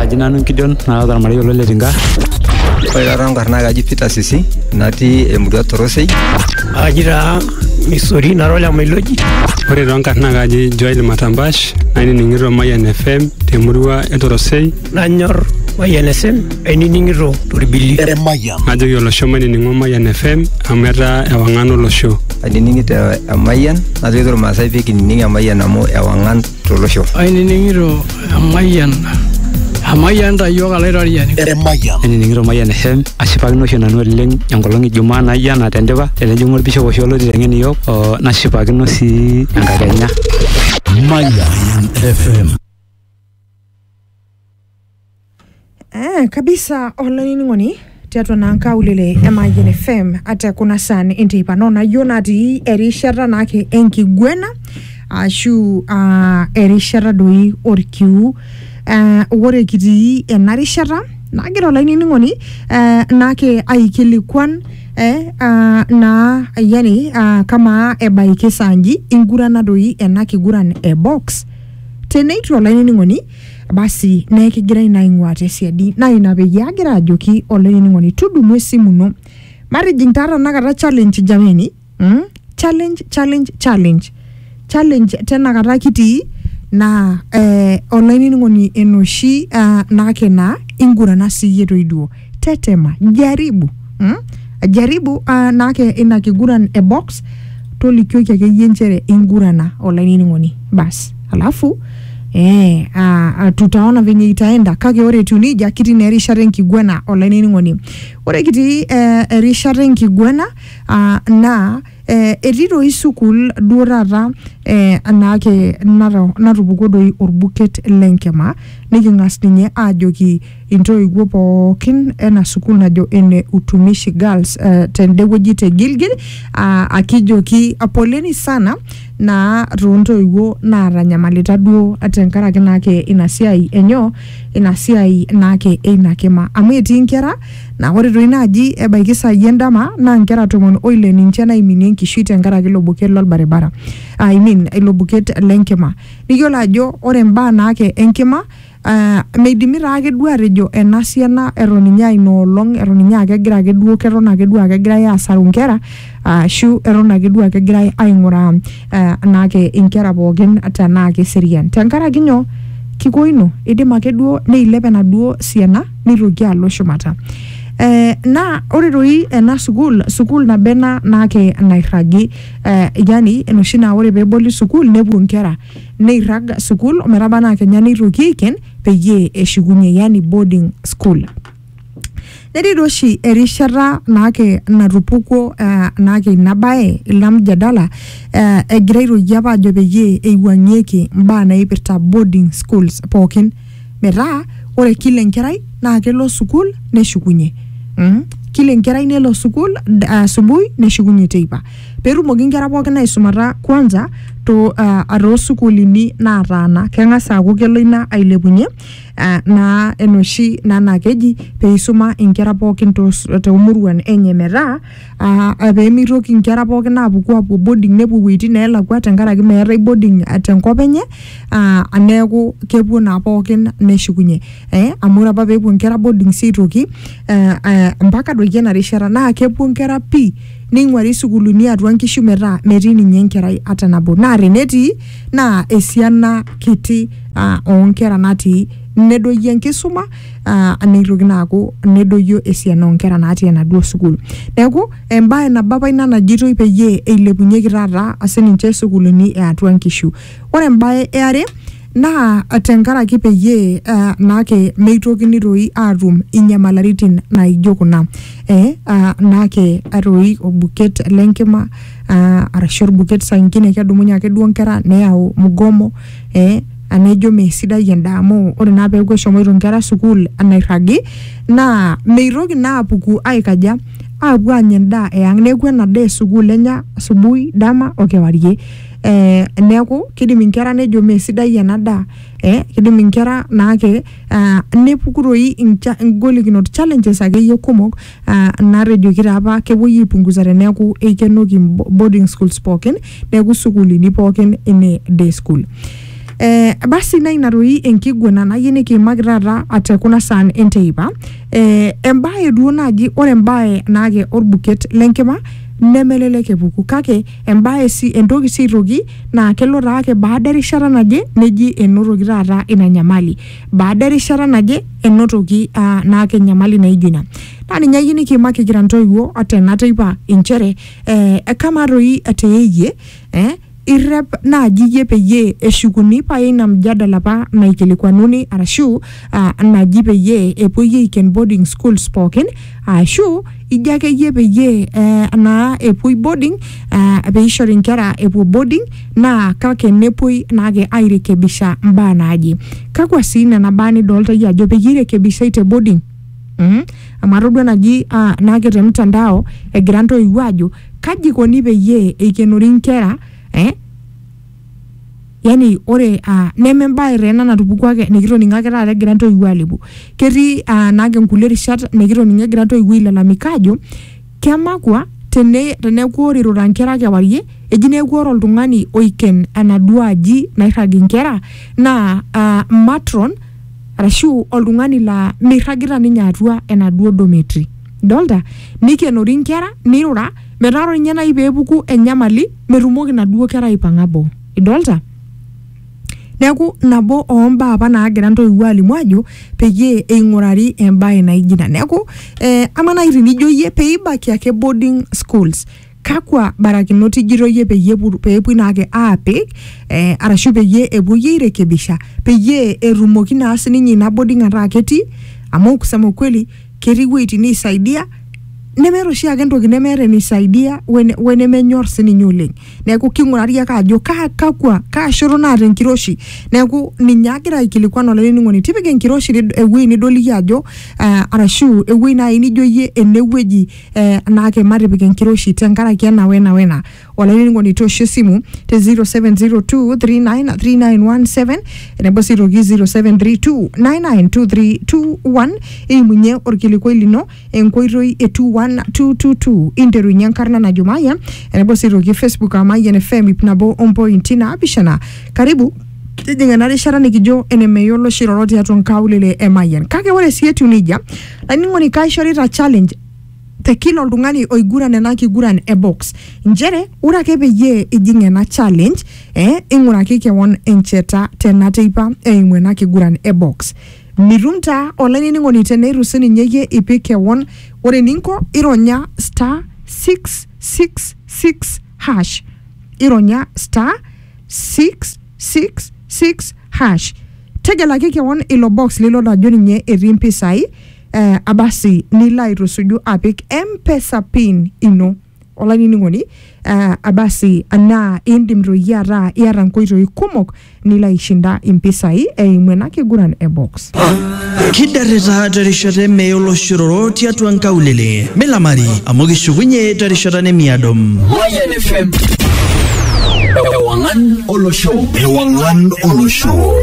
Aji nanu Gideon naata ormarei olo le Tinga. Ore taata enkarna kaji Peter Sisi natii emurua Torosei. Aji taa Misori nara ole Mailoji. Ore too nkarna kaji Joel Matambash nainining'ito Mayian FM temurua e Torosei. Nanyor Mayian FM ainining'ito torbili. Najoki olosho mainining'o Mayian FM amu etaa ewang'an olosho. Ainining'ito Emayian najoki irmaasai pee kinining Emayian amu ewang'an tolosho. Ainining'ito emayian emayian ta iyiook alaitoriani. Emayian. Ainining'ito emayian FM ashipakino oshi nanu oleng enkolong e Jumaa naijo ena tendipa tenejing'u olbishop oshi olotii teng'en iyiook oo nashipakino sii enkakenya. Mayan FM. Eh, kabisa olaining'oni tiatua naa nkaulele e Mayian FM ate kuna saan enteipa no nayieu natii erishata naake enkiguena ashu ah, erishata doi orkiu eh, ore kitii ena rishata nagira olainining'oni eh, naake aikilikuan eh, ah, naa yani ah, kamaa ebaiki saa nji ingurana doi ena kiguran e box teneitu olainining'oni basi naa ekigirai naa aing'uaa tesiadi naa ina peyie agira ajoki olainining'oni tudumu esimu ino matijing taa tenakata challenge jameni mm? challenge challenge challenge challenge tenakata kitii naa eh, olainining'oni enoshi uh, naake naa ingurana siiyie toiduo tetema jaribu mm? jaribu uh, naake ina kiguran e box tolikioki akeyie nchere ingurana olainining'oni basi alafu Eh, ah, ah, tutaona venye itaenda kake ore etiu nejia kitii naa erishata enkiguana olainining'oni ore kitii eh, erishata enkiguana ah, naa eh, etii doi sukuul duo taata eh, naake nato- natupukuo doi orbuket lenkima niking'as ninye aajoki Intoiwuo pookin ena sukuul najo ene Utumishi Girls eh, tende wueji te Gilgil ah, akijoki poleni sana naa toontoiwuo naatanyamalita duo tenkaraki naake ina siai enyoo ina siai naake eina kima amu etii nkera naa ore toi naaji ebaiki saai endama naa nkera tomon oile ninche naiminie enkishui tenkaraki ilo buket lolbaribara I mean ilo buket lenkima niyiolo ajo ore imbaa naake enkima Aa meidimi taa ake duo atejo ena siana eton ninye aa ina olong eton ninye aa kegira ake duo keton ake duo aa kegirai aasaru inkera ashu eton ake duo aa kegirai aing'uraa eh, naake inkera pookin tenaa keserian tenkaraki nyoo kiko ino idim ake duo neilep enaduo siana nitoki alo shumata eh, naa ore toi ena sukuul sukuul nabo ena naake nairragi eh, yani enoshi naa ore peeboli sukuul nepuo inkera neirrag sukuul ometaba naa kenya neitoki aiken peyie eshukunye yani boarding school netii doi oshi erishata naake natupukuo uh, naake ina baye ina mjadala uh, egira aitoki apa ajo peyie eiwuang'ieki imbaa naipirta boarding schools pookin metaa ore kila enkerai naa kelo sukuul neshukunye mm? kila enkerai nelo sukuul d- asubuhi neshukunye teipa petumoki inkera pookin aisumata kwanza to uh, toosukuulini nataana keng'as aaku kelo ina ailepunye uh, naa enoshi naa naa keji peisuma inkera pookin tos- toomuruan enye metaa uh, pemitoki inkera pookin apuku apuo boarding nepuo iwuejitin nelakua tenkaraki meetae boarding uh, tenkop enye ah, neeku kepuo naa pookin neshukunye eh, amu ore apa peepuo nkera boarding sii aitoki eh, eh, mpaka doiki ena rishata naa kepuo nkera pii neing'uari sukuulini atua nkishu metaa metii ninye enkerai ata nabo naa tenetii naa esiana kiti ah, oonkera natii nedoyio enkisuma ah, neitoki naa aaku nedoyio esiana oonkera natii enaduo sukuul neeku embae nabo apa ina najitoi peyie eilepunyeki taata sininche sukuulini eatua nkishu Ore embae e are naa tenkaraki peyie uh, naake meitokini toi aatum inyamalaritin naijo kuna eh, uh, naake atoi orbuket lenkima uh, arashu orbuket saa ingine kedumunye ake duo nkera neyau mgomo eh, anejo mesidai endaa amu ore naa peeku eshomoito nkera sukuul anairragi naa meitoki naa apuku aikaja aapuo anya endaa eang neeku ena daa esukuul enya asubuhi dama okewarie eh, neeku kidim inkera nejo mee sidai ena daa eh, kidim inkera naake ah, nepuku toi incha- ingolikinot challenges akeyie kumok ah, natejoki taa apa kepuoi aipunguza teneeku eikenoki bo- boarding schools pookin neeku sukuulini pookin ine day school Eh, basi naa ina toi enkiguana nayieu nikiimaki taata ate kuna saan enteipa eh, embae duo naaji ore embae naake orbuket lenkima nemelelek epuku kake embae si, entoki si aitoki naa kelo taake baada erishata naje neji enotoki taata ina nyamali baada erishata naje enotoki uh, naake nyamali naijo ina naa ninye ayieu nikiimaki kira ntoiwuo tena teipa inchere eh, kama toi te iyie eh, irrep naaji iyie peyie eshukuni paya ina mjadala apa naikilikuanuni arashu ah, naji peyie epuoi aiken boarding schools pookin ashu ijo akeyie peyie eh, naa epuoi boarding ah, peishori inkera epuo boarding naa kake nepuoi naake airekebisha mbaa naaje kakwa sii nena baa nidolta iyie ajo peyie irekebishai te boarding Mhm. amu atodua naji ah, naake te mtandao egira ntoiwuo ajo kaji ikoni peyie eikenori inkera eh, yani ore uh neme embaye taa ena natupukuo ake nikitoning'o ake taata egira intoiwuo alepu ketii uh naake inkulie rishat nikitoning'o egira intoiwuo ailalamika aajo kemakua tene teneeku ore irura inkera kewarie eji neeku ore oltung'ani oiken enaduo aji nairrag inkera naa uh matron arashu oltung'ani laa mirragita ninye atua enaduo dormitory. dolta neikenori inkera neirura metaa ore ninye naaji peepuku enyamali metumoki inaduo kera aipang'a boo idolta neeku nabo ombaa apa naagira intoiwuo alimu ajo peyie eing'urari embaye naijo ina neeku eh, ama naaji tenijo iyie peibaki ake boarding schools kakwa barakinot ijito iyie peyie epu- peepuoi naake aapik eh, arashu peyie epuoi airekebisha peyie etumoki naa sininye ina boarding ataa ketii amu kusema ukweli ketii iwueitin neisaidia nemeeta oshiake entoki nemeeta eneisaidia wene- wenemenyor sininye oleng neeku king'urari ake ajo kaa kakwa kaa shoto naata enkiroshi neeku ninye agira aikilikuan olainining'oni tipika enkiroshi nid- ewuei nidol iyie ajo eh, arashu ewuei naaji nijo iyie enewueji eh, naake matipik enkiroshi tenkaraki ena wena wena olainining'oni toosho esimu te 0702393917 enebo sii toki 0732992321 eimunye orkilikuai lino enkoitoi e 21222 interunye enkarna najo mayian enebo sii toki facebook aa mayian fm ip nabo ompointi naapishana karibu tijing'a ena rishata nikijo enemeyiolo oshi iroro tiatua nkaulele e mayian kake ore sii etiu nejia Laining'oni kaishorita challenge te kila oltung'ani oiguran ena kiguran e box nchere ore ake peyie ijing ena challenge eh, ing'uraki kewon encheta tena teipa eimu ena kiguran e box mitum taa olainining'oni teneitu sininye iyie ipik kewon ore eninko ironya star 666 hash ironya star 6 666 hash tegelaki kewon ilo box lilot ajo ninye etii impisai eh, abasi nilo aitusuju apik mpesa pin ino olainining'oni eh, abasi anaa indim toi ataa iata nkoitoi kumok nilo aishinda impisai eimu ena kiguran e box kidarrita terishata emee oloshororo tiatua nkaulele milamari amu kishukunye terishata nemiado Mayan FM. Ewangan Olosho. Ewangan Olosho.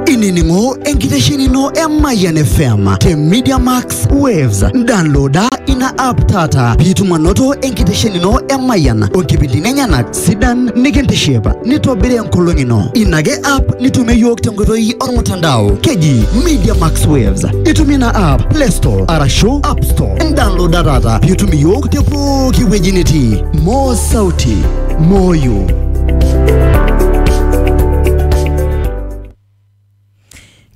inining'o enkitesheni ino e Mayan FM te Media Max Waves. Downloada ina app taata piitum anoto enkitesheni ino e Mayan o nkipindini enyenak sidan nikintiship nitobiri enkolong ino ina ake app nitumie yiok tenkoitoi ormutandao keji media max waves itumie ina app play store arashu app store indownloada taata piitum iyiok te pooki wueji nitii moo sauti moyu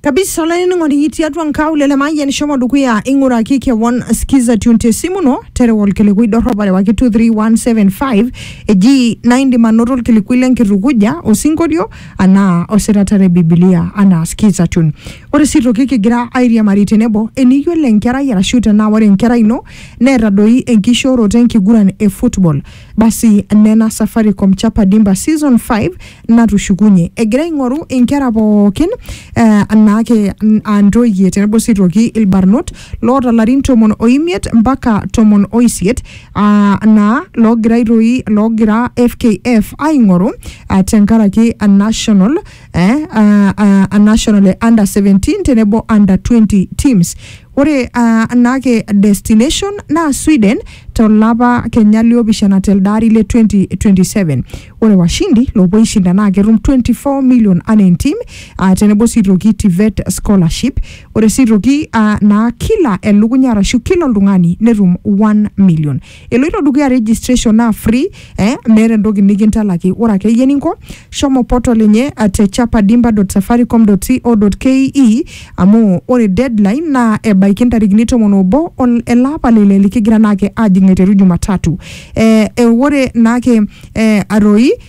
kabisa olainining'oni tiatua nkaulele mayian shomo dukuya ing'uraki kewon skiza tune te simu ino terewa olkilikuai dorrop arewaki 23175 eji naa indim anoto olkilikuai lenkitukuja osinkolio anaa osirata le bibilia anaa skiza tune ore sii toki kigira airiamari tenebo eniyiolo enkerai arashu tenaa ore enkerai ino neeta doi enkishooroto enkiguran e football Basi nena Safaricom Chapa Dimba Season 5 natushukunye egira aing'oru inkera pookin eh, naake n- aa ntoyie tenebo sii aitoki ilbarnot loota larin tomon o imiet mpaka tomon o isiet ah, naa loogira aitoi loogira FKF aing'oru ah, tenkaraki a national eh, ah, ah, a national e under 17 tenebo under 20 teams Ore uh, anaake destination naa Sweden tolapa kenya liopishana telde ari le 2027. Ore washindi loopuo aishinda naa ketum 24 million anaa entim uh, tenebo sii toki TVET scholarship. Ore sii toki uh, naa kila elukunya arashu kila oltung'ani netum 1 million. Eloito dukuya registration naa free eh, meeta entoki nikintalaki. Ore akeyie eninko, shomo portal enye eh, te chapadimba.safaricom.co.ke amu ore deadline naa ebaiki ntarikini tomon obo ol- ele apa le ile likigira naake ajing aiteru Jumatatu. Eh, eh, ore naake eh, atoi